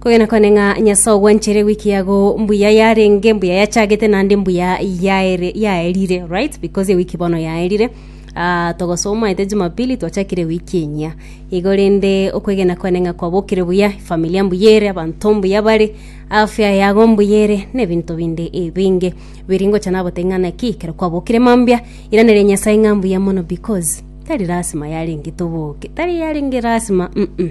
Kogenda kwane ng'a Nyasae ogwanchire ewiki yago mbuya yarenge, mbuya yachagete, naende mbuya yaere, yaerire, right? Because ewiki bono yaerire. Ah, togosomaete Jumapili twachakire ewiki enyia. Igo rende okwegena kwane ng'a kwabokire buya, familia mbuya ere, abanto mbuya bare, afya yago mbuya ere, na ebinto binde ebinge. Biri ngocha nabotebia ng'a naki ekero kwabokire mambia, iraneria Nyasae ng'a mbuya mono because tari lasima yarenge toboke, tari yarenge lasima, mm.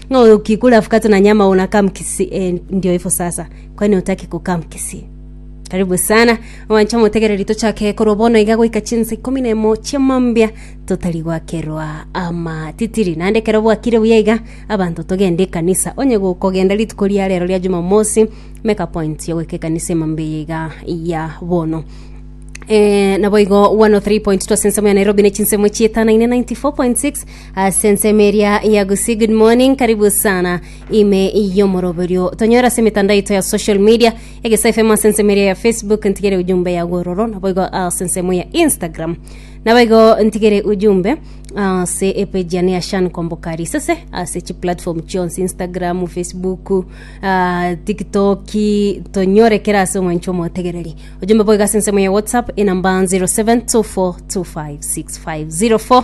Ng'a oyo ki kula fukata na nyama ona kam kisi eh, ndio ifo sasa. Kwa nini utaki kukam kisi? Karibu sana owancha omotegereri tochake korwa bono iga goika chinsa ikomi na emo chiamambia totari gwakerwa amatitiri naende kero bwakire buya iga abanto togende ekanisa onye gokogenda rituko ria rero ria jumamosi make a point ya goika ekanisa emambia eye iga ya bono Eh, nabo igo 103.2 ase ensemo ya nairobi ne chinsemo chietano ine 94.6 Ase ensemo eria ya Gusii Good Morning, karibu sana ime y'omoroberio. Tonyora ase emitandao yaito ya social media, Egesa FM ase ensemo eria ya Facebook, ntigere ujumbe ya gwororo, naboigo ase ensemo ya Instagram. Naboigo ntigere ujumbe ase epeji yane ya Shan Kombokari sese ase chi platform chionsi Instagram, Facebook, uh, TikTok, tonyore kera ase omwancho omotegereri. Ujumbe boigo ase ensemo ya WhatsApp enamba 0724256504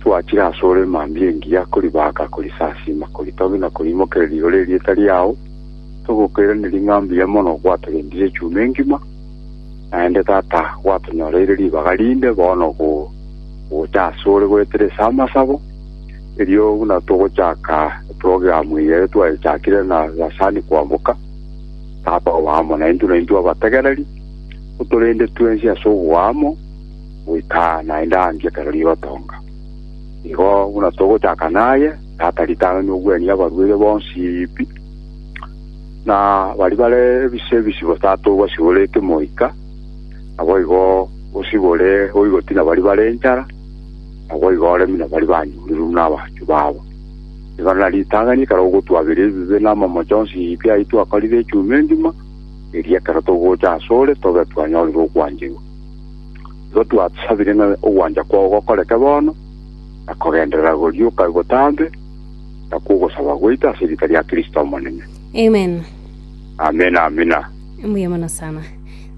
Twachire asore mambia engiya koribaaka, korisasiima, koritogia na koriimokereria igoro erieta riao, togokoiraneria ng'a mbuya mono gwatogendirie echuma engima, naende Tata gwatonyoreire ribaga rinde, bono gocha asore goetera ase amasabo, erio buna togochaka eprogramu eye ere twayechakire na Lasani kwamoka, Tata obe amo naintwe, naintwe abategereri, otorende twensi ase oboamo, goika naende aanche ekero rigotoonga. Igo buna togochaka naye, tata ritano nobwanie abarwire bonsi pi, na baria bare ebise ebisibo tata obasibore ekimoika, naboigo osibore oigoti na baria bare enchara, naboigo oremi na baria banyurure buna abanchwa babo. Igo na ritang'ani ekero ogotwabera ebibe na amamocho onsi pi ayio twakorire echuma engima, erio ekero togocha asore tobe twanyorire okwancherwa. Igo twasabire ng'a ogwancha kwao gokoreke bono, na kogenderera gorioka botambe, na kw'ogosaba gwaito ase erieta ria Kristo Omonene. Amen. Amina, amina. Mbuya mono sana.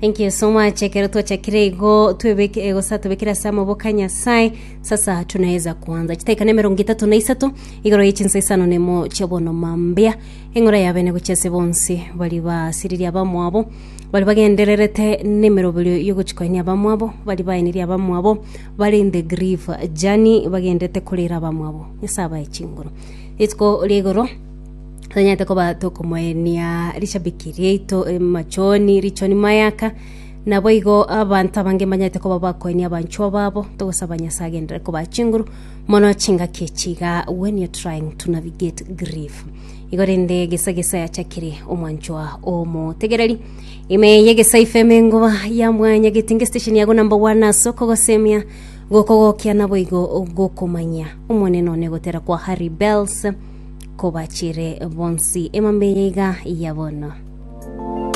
Thank you so much. Ekero twachakire igo twebeke eh, gosa tobekire ase amaboko a Nyasaye sasa tunaweza kuanza chitaika na emerongo etato na isato igoro ye chinsa isano nemo chiabono mambia eng'ora ya bene gochia ase bonsi bari basiriria abamwabo Baria bagendererete nemeroberio y'ogochikoinia abamwabo, baria baenirie abamwabo, bare in the grief journey, bagendererete korera abamwabo. Nyasae abae chinguru. Rituko ria igoro, tonyarete koba tokomoenia rishabiki riaito emachoni, richoni mayaka, naboigo abanto abange mbanyarete koba bakoenia abanchwa babo, togosaba Nyasae agenderere kobaa chinguru, mono chingaki echi igaa when you're trying to navigate grief. Igo rende gesa gesa yachakire omwanchwa omotegereri. Ime yegesa ifm engoba ya mwanyagete nge station yago namba one ase okogosemia gokogokia naboigo gokomanyia omonene one gotera kwa harry bells kobachire bonsi emambe yaiga ya bono